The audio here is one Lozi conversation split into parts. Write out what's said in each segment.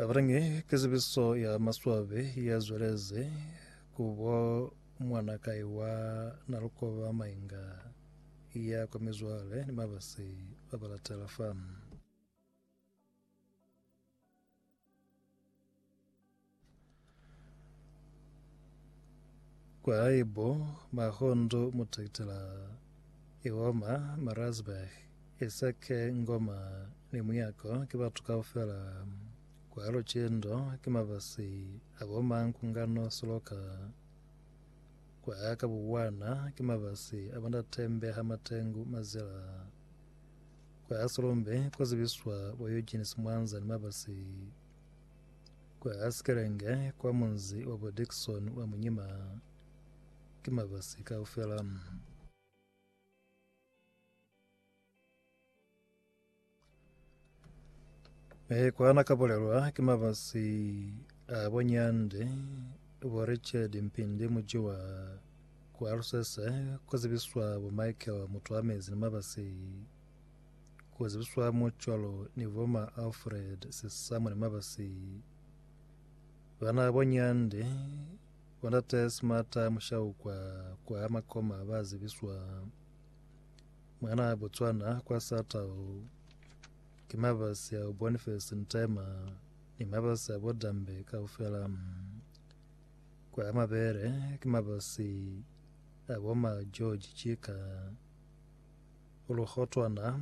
Abarangi ke zibiso ya maswabi ya zweleze kubo mwana kai wa Nalukoba Mainga ya kwa mizwale ni mabasi ba balatela fa. Kwa haibo, Mahondo mu Trakitela i Homa, Maritzburg, i sa ke Ngoma ni Muyako ki batu kaufela. Kwa Lucindo ki mabasi a bo Mankungano Siloka. Kwa ka Buwana ki mabasi a bo Ndate Mbeha Matengu Mazela. Kwa Silumbi ku zibiswa bo Eugene Simwanza ni mabasi. Kwa Skelenge, kwa munzi wa bo Dickson wa Munyima, ki mabasi kaufela. E kwa na kapolelwa ki mabasi a bo Nyande, bo Richard Mpindi Mujiwa, kwa Lusese, kwa zibiswa bo Michael Mutwamezi ni mabasi Kuzibiswa mo cwalo ni bo ma Alfred Sesamo ni Mabasi bana bo Nyande, bo Ndate Smata Mushaukwa kwa Makoma ba zibiswa mwana Botswana kwa Satao ki Mabasi a Boniface Ntema ni Mabasi a Bodambe kaufela kwa Mabele ki Mabasi a Boma George Chika Lukotwana,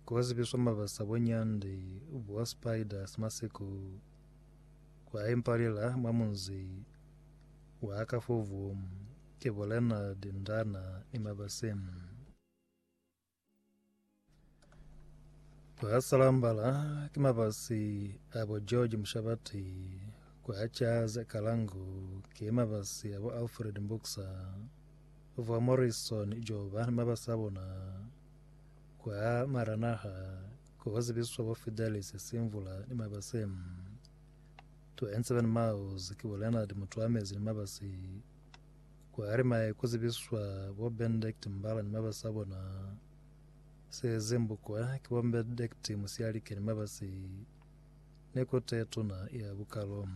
kwa zibiswa mabasa bo nyandi bwa spiders masiku kwa impalela mwa munzi wa Kafuvu ki bo Leonard Ndana ni mabasi. Kwa Salambala ki mabasi a bo George Mushabati, kwa Charles Kalangu ki mabasi a bo Alfred Mbuksa. Vwa Morrison joba ni mabasa bona kwa mara naha ko kwa zibiswa bo Fidelis Simvula ni mabase. To en seven miles ki bo Leonard Mutuamezi ni mabasi kwa Arimaye ko zibiswa bo Benedict Mbala ni mabasa bona. Sezi mbukwa ki bo Benedict Musialike ni mabasi ne ko te tuna ya bukalo.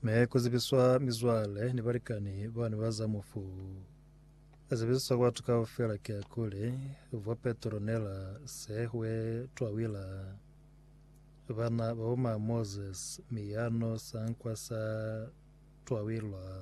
Ne ku zibiswa mizwale ni balikani ba ne ba za mufu. A zibiswa ku batu kaufela ki akuli vwa Petronela se hwe twawila bana ba uma Moses miyano sankwa sa twawilwa.